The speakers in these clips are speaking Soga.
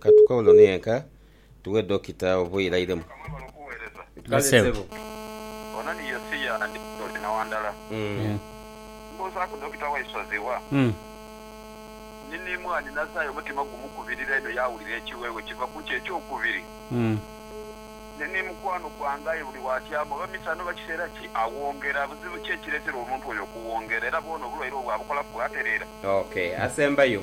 Ka tukaule ono yenka tughe Dokita oba oirairemu. Kale ssebo. Ono ni Yosia ndi Ntore Nawandala. Mbuuzaaku Dokita waisu aziwa? Ni ni mwaani nazaayo omutima gumukubirira inho yaawulira ekiweewe kiva ku ki ekyokubiri. Ni ni mukwano gwange aye buli waatyama oba misana oba kiseera ki awongera. Buzibu ki ekireetera omuntu oyo okuwongera? Era bwona obulwaire obwo abukolaku bwatereera? Ok. Asembayo.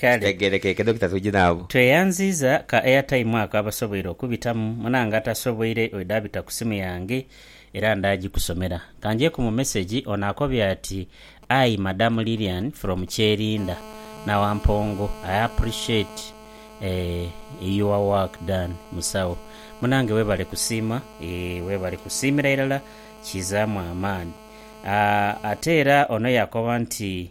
Kale. Tegerekeke Dokita twidhi nabo. Tweyanziiza ka airtime ako abasoboire okubitamu, munange atasoboire oidha abita ku simu yange era nda gikusomera. Kanjeeku mu message ono akobye ati Ayi madam Lilian from Kyerinda na Wampongo I appreciate eeh your work done musawo. Munange webale kusiima eeh webale kusiimira irala kizaamu amaani. Aah ate era ono yakoba nti.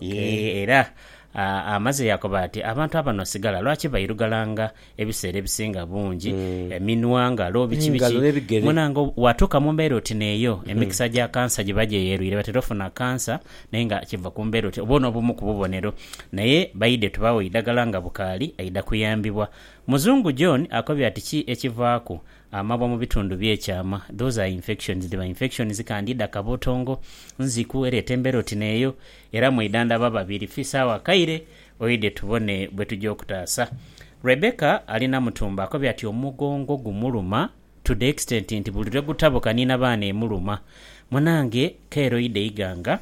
Yee, era amaze yaakoba ati, Abantu abano sigala lwaki bairugalanga ebiseera ebisinga bungi, eminwa, ngalo, biki biki. Munaanga waatuuka mu mbeera oti n'eyo, emikisa gya kansa giba gyeyerwire. Batera ofuna kansa naye nga kiva ku mbeera oti. Obwo n'obumu ku bubonero. Naye baidhe tubaagho eidagala nga bukaali aidha kuyambibwa. Muzungu John akobye ati, Ki ekivaaku? Amabwa mu bitundu bye kyama, those are infections, dhiba infections kandi dha kabotongo, nziku ereeta embeera oti n'eyo era mweidhandha ba babiri fi sawa kaire oidhe tubone bwe tugya okutaasa. Rebecca ali Namutumba akobye ati omugongo gumuluma to the extent nti buli lwe gutabuka ni na baana emuluma. Munange kaire oidhe Iganga.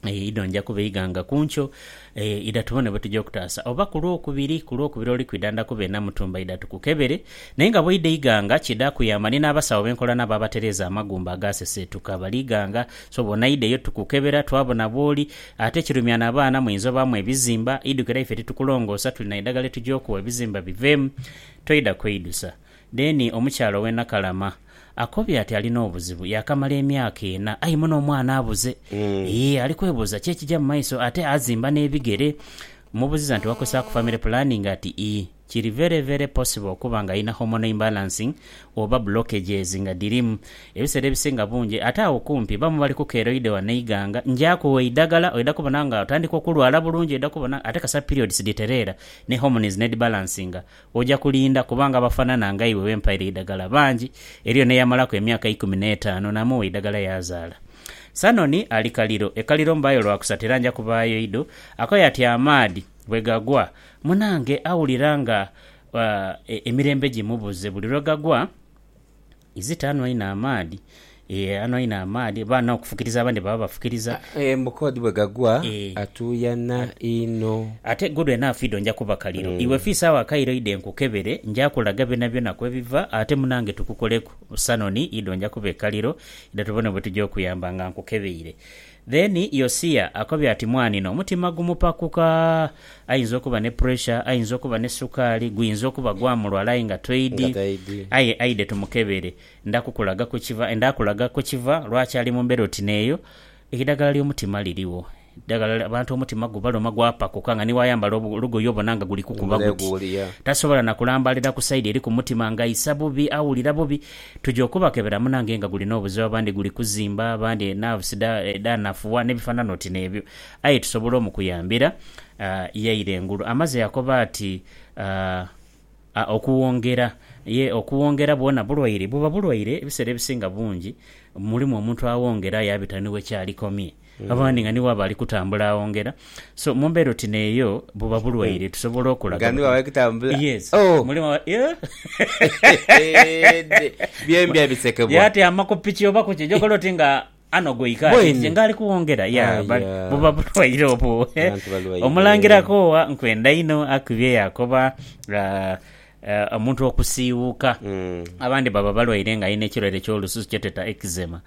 Eyo idho nja kubeiga nga ku nkyo. Eyo idha tubone bwe tuja okutaasa. Oba ku Lwokubiri, ku Lwokubiri oli kwidha nda kuba e Namutumba idha tukukebere. Naye nga bw'oidha eighanga kidha kuyamba. Ni n'abasawo be nkola nabo abatereeza amagumba agaaseseetuka bali ighanga. So bw'onaidha eyo tukukebera twabona bw'oli. Ate ekirumya n'abaana muyinza obaamu ebizimba. Idhuke era ife titukulongoosa tuli na idagala lye tugya okuwa ebizimba biveemu. Toidha kweidusa. Then omukyala ow'e Nakalama. Akobye ati alina obuzibu, yaakamala emyaka ena aye muno omwana abuze. Yee ali kwebuuza ki ekija mu maiso ate azimba n'ebigere. Mmubuziza nti wakozesaaku family planning ati ii. Kiri very very possible okuba nga alina hormonal imbalancing oba blockages nga dhirimu. Ebiseera ebisinga bungi ate agho kumpi bamu bali ku keroide wano eighanga. Nja kugha eidhagala oidha kubona nga otandika okulwala bulungi oidha kubona ate kasita periods dhitereera ne hormones n'edhibalancinga Oja kulinda, kubanga abafanana nga iwe be mpaire eidagala bangi. Eriyo n'eyamalaku emyaka eikumi n'etaanu, naamugha eidagala yaazaala. Sanoni ali kaliro. E kaliro mbaayo lwa kusatu era nja kubaayo idho. Akoya ati amaadhi bwe gagwa, munaange awulira nga emirembe gimubuze buli lwe gagwa. Izita anwa inho amaadhi. Eeh anwa inho amaadhi. Oba anha okufukiriza abandi baba bafukiriza. Eeh mbu kodi bwe gagwa atuuyana inho. Ate good enough idho nja kuba kaliro. Iwe fiisa agho akairo idhe nkukebere. Nja kulaga byonabyona kwe biva. Ate munange tukukoleku sanoni idho nja kuba ekaliro. Idha tubone bwe tuja okuyamba nga nkukebeire. Then Yosia akobye ati mwanino omutima gumupakuka ayinza okuba ne pressure ayinza okuba ne sukaali guyinza okuba gwamulwala aye nga toidi aye aidhe tumukebere ndakukulaga kukiva ndakulaga kukiva lwaki ali mumbera oti neyo eidagala lyomutima lirigho eidagala abantu omutima gubaluma gwapakuka nga niwayambala olugoye obona nga guli kukuba guti tasobola nakulambalira kusaidi eri kumutima nga aisa bubi awulira bubi Tuja okubakebera munange nga guli n'obuzibu abandi guli kuzimba, abandi nerves dha dhanafugha n'ebifanana oti n'ebyo aye tusobola omukuyambira. Yaira engulu amaze yakoba ati, Aah, okuwongera, ye okuwongera bwona bulwaire? Buba bulwaire ebiseera ebisinga bungi mulimu omuntu awongera yabita ni we kyalikomye. abandi nga nibo abali kutambula agho ngera so mumbera oti neyo buba bulwaire tusobola okulaga nga nibo abali kutambula yes oh. mulimu yeah. byembi abisekebwa yatyama ku piki oba kuki jokola oti nga ano gweikaakije nga ali kuwongera ya ah, yeah. buba bulwaire obwo omulangirako owa nkwenda ino akubye yakoba uh, Omuntu okusiiwuuka, abandi baba balwaire nga alina ekirwaire eky'olususu kyetweta eczema,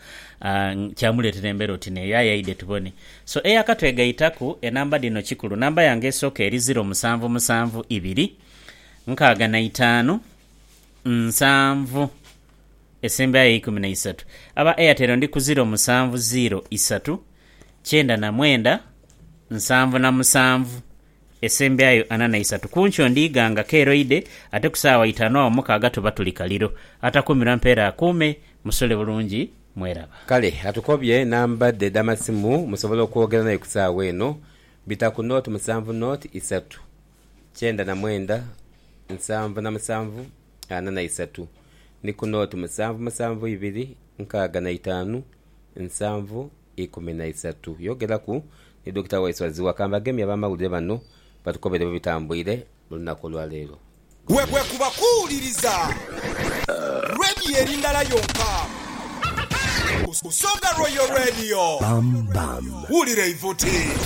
kyamuleetera embeera oti n'eyo. Aye aidhe tubone. So, eyakatwegaitaku, enamba dhino kikulu. Namba yange esooka eri ziro musanvu musanvu ibiri nkaaga na itaanu nsanvu esembayo eikumi na isatu. Aba Airtel ndi ku ziro musanvu ziiro isatu kyenda na mwenda nsanvu na musanvu Esembyayo ana na isatu ku nkyo ndiighanga keroide, ate ku saawa itaanu agho mukaaga tuba tuli kaliro. Atakuumirwa mpeera akuume. Musule bulungi. Mweraba. Kale atukobye namba dhe edh'amasimu musobole okwogera naye ku saawa eno, bita ku nooti musanvu nooti isatu, kyenda na mwenda, nsanvu na musanvu, ana na isatu, ni ku nooti musanvu musanvu ibiri, nkaaga na itaanu, nsanvu ikumi na isatu. Yogeraku ni Dokita Waiswa Zziwa kambagemye abamawulire bano batukobere bwebitambwire mulunaku olwaleero. Bwekuba kuwuliriza Radio eri ndala yonka, Busoga Royal Radio. Wulira eivuti.